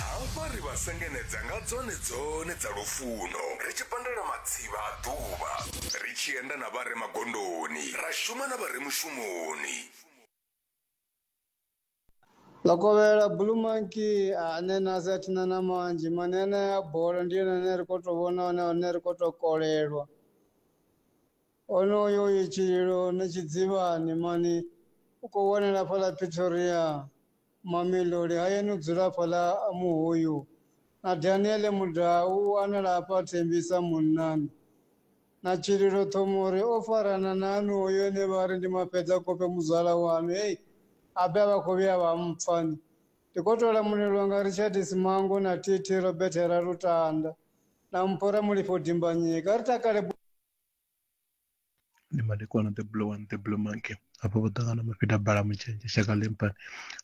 hafha ri vha sengenedza nga dzone dzone dza lufuno ri tshi pandela matsivha a ḓuvha ri tshi enda na vhare magondoni ra shuma na vhare mushumoni Lokovhela Blue Monkey a ne na sa thina na manzhi mane ane ya bola ndi yone ane ri khou tou vhona hone hone ri khou tou kolelwa onoyo uyu tshililo ni tshidzivhani mani u khou wanela fhaḽa Pretoria Mamelodi a ye no dzula fhaḽa Muhuyu, na Daniele Mudau u wanala hafha Thembisa Munnani, na Tshililo Ṱhomori o farana na aṋu hoyu ene vha ri ndi Mafhedzakhofhe muzwala waṋu, hei habe a vha khou vhuya vha mpfa ni. Ndi khou tou lamulelwa nga Richard Simango na TT Robert Ralutanda na mpho Ramulifho Dimbanyika. Ri takale. ndi madekwana the blue one the blue monkey hafho vho ṱangana mafhida bala mutshenzhe shaka lempani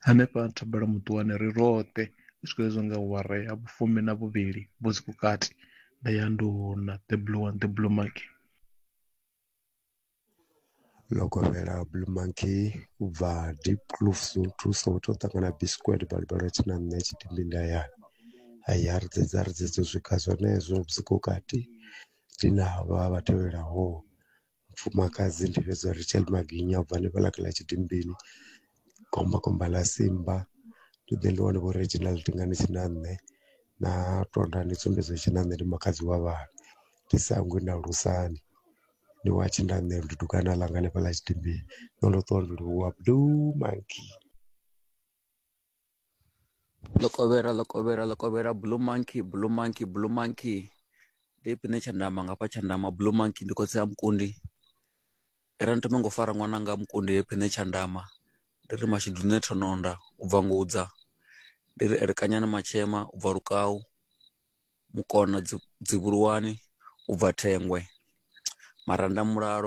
hanefha thabela muṱuwane ri roṱhe u swika hezwo nga ware ya vhufumi na vhuvhili vho dzi kukati nda ya nduna the blue one the blue monkey ḽo kovhela blue monkey u bva deep kloof thuso u tou ṱangana bisquet balibalo tshi na nṋe tshidimbi nda ya haya ri dzedza ri dzedza u swika zwenezwo vhusiku kati Dzina havha vha tevhelaho, mufumakadzi ndi fhedza Rachel Maginya u bva hanefhaḽa kha ḽa Tshidimbini, Komba Komba ḽa Simba. Ndi ḓe ndi wane Vho Reginald Ndingani Tshinanṋe na Tondani Tsumbedzo Tshinanṋe ndi makhadzi wa vhavhi. Ndi sa hangwi na Lusani ndi wa Tshinanṋe ndi dukwana ḽanga hanefhaḽa Tshidimbini, ndo no ṱuwa ndo livhuwa Blue Monkey. Lokovhera, Lokovhera, Lokovhera, Blue Monkey, Blue Monkey, Blue Monkey. Ndi ipfi ṋe tshandama ngafha tshandama Blue Monkey ndi khotsi a Mukundi. Ri ri ni thome ngo fara ṅwananga Mukundi he pfi ṋe tshandama ndi ri mashudu nṋe thononda u bva ngudza ndi ri elekanyani matshema u bva lukau mukona dzi dzivhuluwani u bva thengwe maranda mulalo.